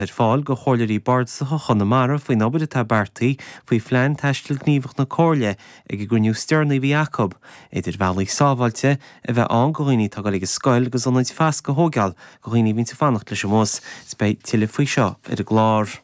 ar fáil go Chomhairleoirí Bardasacha Chonamara faoin obair atá beartaí faoi Phlean Taistil Gníomhach na Comhairle ag an gcruinniú deireanach a bhí acu, idir bhealaí sábháilte a bheith ann go dhaoine atá ag dul ag an scoil agus ionaid fasctha a thóigeáil go dhaoine a bhíonns ag fanacht leis an mbus, agus beidh tuilleadh faoi seo ar an gclár.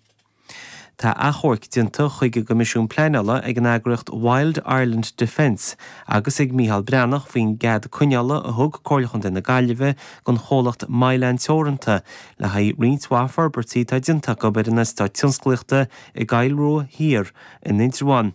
Tá achomhairc déanta chuig an gCoimisiún Pleanála ag an eagraíocht Wild Ireland Defence agus ag Micheál Breathnach faoin gcead coinneála a thug Comhairle Chontae na Gaillimhe don chomhlacht Mylan Teoranta, Le haghaidh roinnt mhaith forbairtí atá déanta acu ar an eastát tionsclaíochta i gCill Rua Thiar in Indreabhán.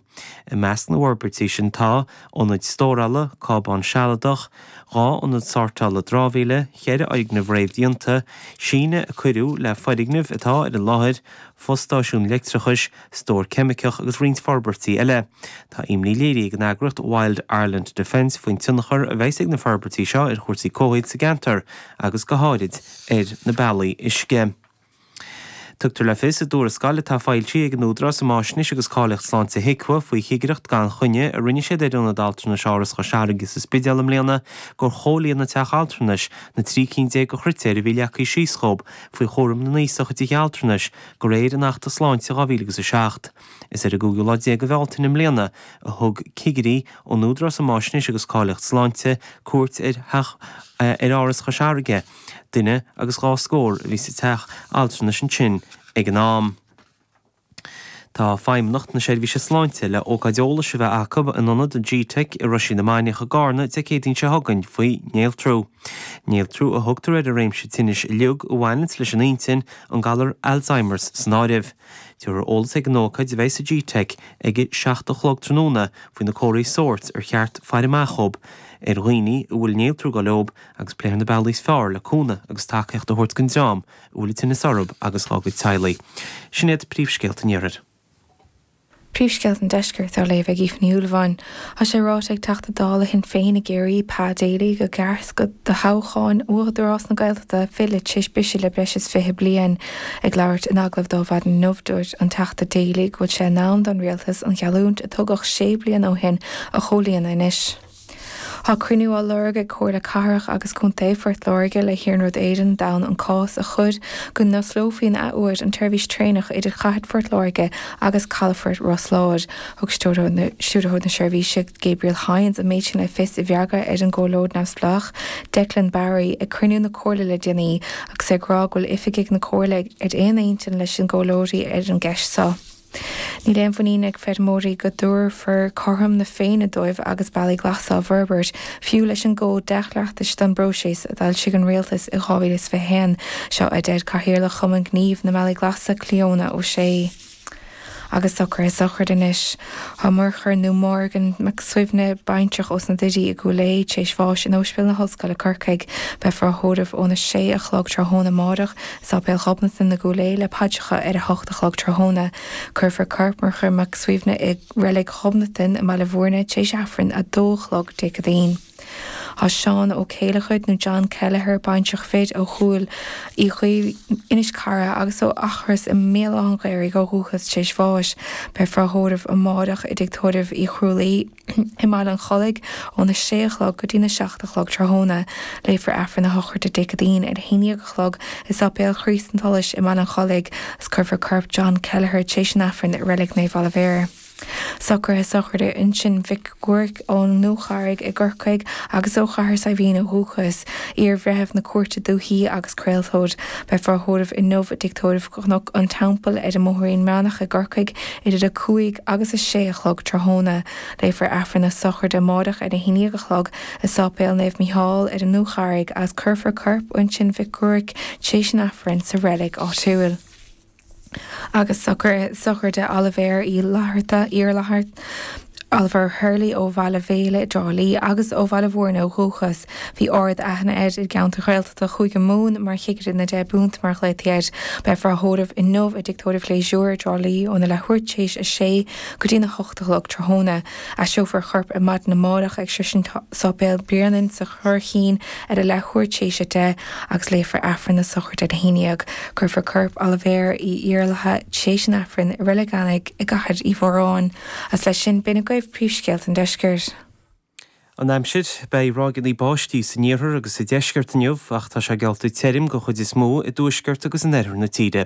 I measc na bhforbairtí sin tá, ionad stórála, cábán sealadach, dhá ionad sortála drámhaíle, cheithre fhoirgneamh réamhdhéanta, síneadh a cuireadh le foirgnimh atá ar an láthair, fostáisiún leictreachais, stór ceimiceach agus roinnt forbairtí eile. Tá imní léirithe ag an eagraíocht Wild Ireland Defence faoin tionchar a bheas ag na forbairtí seo ar chúrsaí comhshaoil sa gceantar agus go háirid ar na bealaí uisce. Tugtar le fios i dtuarascáil atá foilsithe ag an Údarás um Fháisnéis agus Cáilíocht Sláinte, HIQA, faoi chigireacht gan choinne a rinne siad ar Ionad Altranais Áras Chois Fharraige sa Spidéal i mbliana gur chomhlíon an teach altranais na 13 ceann de chritéir a bhí leagtha síos dhób faoi chúram na n-aosach i dtithe altranais De réir an Achta Sláinte 2000 agus 7, is ar an gcúigiú lá déag de Bhealtaine i mbliana a thug cigirí ón Údarás um Fhaisnéis agus Cáilíocht Sláinte cuairt ar Áras Chois Fharraige. Duine agus dhá scór a bhí sa teach altranais ansin ag an am. Tá Feidhmeannacht na Seirbhíse Sláinte le ócáid eolais a bheith acu in ionad gteic i Roisín na Mainiach i gCarna Dé Céadaoin seo chugainn faoi néaltrú. Néaltrú a thugtar ar an réimse tinnis uilig a bhaineanns leis an intinn, an galar Alzheimers san áireamh. Tabharfar eolas ag an ócáid a bheidh sa GTeic ag a 7 a chlog tráthnóna faoi na comharthaí sóirt ar cheart faire amach dhób ar dhaoine a bhfuil néaltrú ag gabháil leob agus pléifear na bealaí is fearr le cúnamh agus tacaíocht a thabhairt don dream a bhfuil an tinneas orthub agus dhá gcuid teaghlaigh. Sin iad príomhscéalta an iarthair. Príomhscéalta an Deiscirt á léamh ag Aoife Ní Shúilleabháin. Tá sé ráite ag Teachta Dála Shinn Féin i gCiarraí, Pa Daly, go gcaithfear toghchán Údarás na Gaeltachta a fhilleadh tar éis briseadh le breis is fiche bliain. Ag labhairt in agallamh dó ar maidin inniu dúirt an Teachta Daly go bhfuil sé in am don Rialtas an gheallúint a tugadh sé bliana ó shin a chomhlíonadh anois. Tá cruinniú á lorg ag Comhairle Cathrach agus Contae Phort Láirge le hIarnród Éireann d'fhonn an cás a chur go n-osclófaí an athuair an tseirbhís traenach idir Cathair Phort Láirge agus calafort Ros Láir. Thug Stiúrthóir na Seirbhísí, Gabriel Hynes, an méid sin le fios i bhfreagra ar an gcomhairleoir neamhspleách, Declan Barry, ag cruinniú na Comhairle le déanaí agus é ag rá go bhfuil oifigigh na Comhairle ar aon intinn leis na comhairleoirí ar an gceist seo. Níl aon mhuinín ag feirmeoirí go dtabharfar cothrom na Féinne dóibh agus bealaí glasa á bhforbairt, fiú leis an gCód Dea-Chleachtais don bPróiseas a d'fhoilsigh an Rialtas in 2021. Seo a deir Cathaoirleach Chumann Gnímh na mBealaí Glasa, Cleona O'Shea. Agus socruithe sochraide anois. Tá Murchadh, nó Morgan, Mac Suibhne baintreach fir ós na Doirí i gCúil Aodha tar éis bháis in Ospidéal na hOllscoile, Corcaigh. Beifear á thórramh óna sé a chlog tráthnóna amáireach, i Sáipéal Ghobnatan i gCúil Aodha le paidreacha ar a hocht a chlog tráthnóna. Cuirfear corp Mhurchaidh Mhic Suibhne i Reilig Ghobnatan i mBaile Mhúirne tar éis Aifreann a dó a chlog Dé Céadaoin. Tá Seán Ó Céileachair nó John Kelleher, baintreach fir ó Chúil Uí Chaoimh, Inis Carra agus ó Eachros i mBéal Átha'n Ghaorthaidh ó dhúchas tar éis bháis. Beifear á thórramh amáireach i dTigh Tórraimh Uí Chrualaoi. i mBaile an Chollaigh óna sé a chlog go dtí a seacht a chlog tráthnóna. Léifear Aifreann na sochraide Dé Céadaoin ar a haon dhéag a chlog i Sáipéal Chríost an tSolais i mBaile an Chollaigh agus cuirfear corp John Kelleher tar éis an Aifrinn i Reilig Naomh Oilibhéar. Socruithe sochraide Uinsinn Mhic Ruairc ón nDúcharraig i gCorcaigh agus ó Chathair Saidhbhín ó dhúchas, iar-bhreitheamh na cúirte dúichí agus craoltóir. Beifear á thórramh inniu i dtig tórraimh Chnoc an Teampaill ar an mBóthairín Meánach i gCorcaigh Idir a cúig agus a sé a chlog tráthnóna, léifear Aifreann na sochraide amáireach ar a haon dhéag a chlog i Sáipéal Naomh Mícheál ar an nDúcharraig agus cuirfear corp Uinsinn Mhic Ruairc tar éis an Aifrinn sa reilig áitiúil. Agus sochraide Oilibhéir Uí Iarlaithe, Iarlaithe, Oliver Hurley ó Bhaile Uí Bhéil i dTrá Lí agus ó Bhaile Mhúirne ó dhúchas. Bhí ard aithne air i gceantair Ghaeltachta Chúige Mumhan mar chigire na deich bpunt mar a ghlaotaí air. Beifear á thórramh inniu i dtig tórraimh Gleasure i dTrá Lí óna leathuair tar éis a sé go dtí'n a hocht a chlog tráthnóna. Aistreofar a chorp ar maidin amárach ag sroisint Sáipéal Bhréanainn sa Churraichín ar a leathuair tar éis a deich agus léifear Aifreann na sochraide ar a haon dhéag. Cuirfear corp Oilibhéir Uí Iarlaithe tréis an Aifrinn i Reilig Eanaigh i gCathair Uí Mhóráin. Agus leis sin, b'in agaibh príomhscéalta an Deiscirt. An Aimsir, beidh ráigeanna báistí san iarthar agus sa deisceart inniu ach tá sé geallta tirim den chuid is mó i dtuaisceart agus in oirthear na tíre.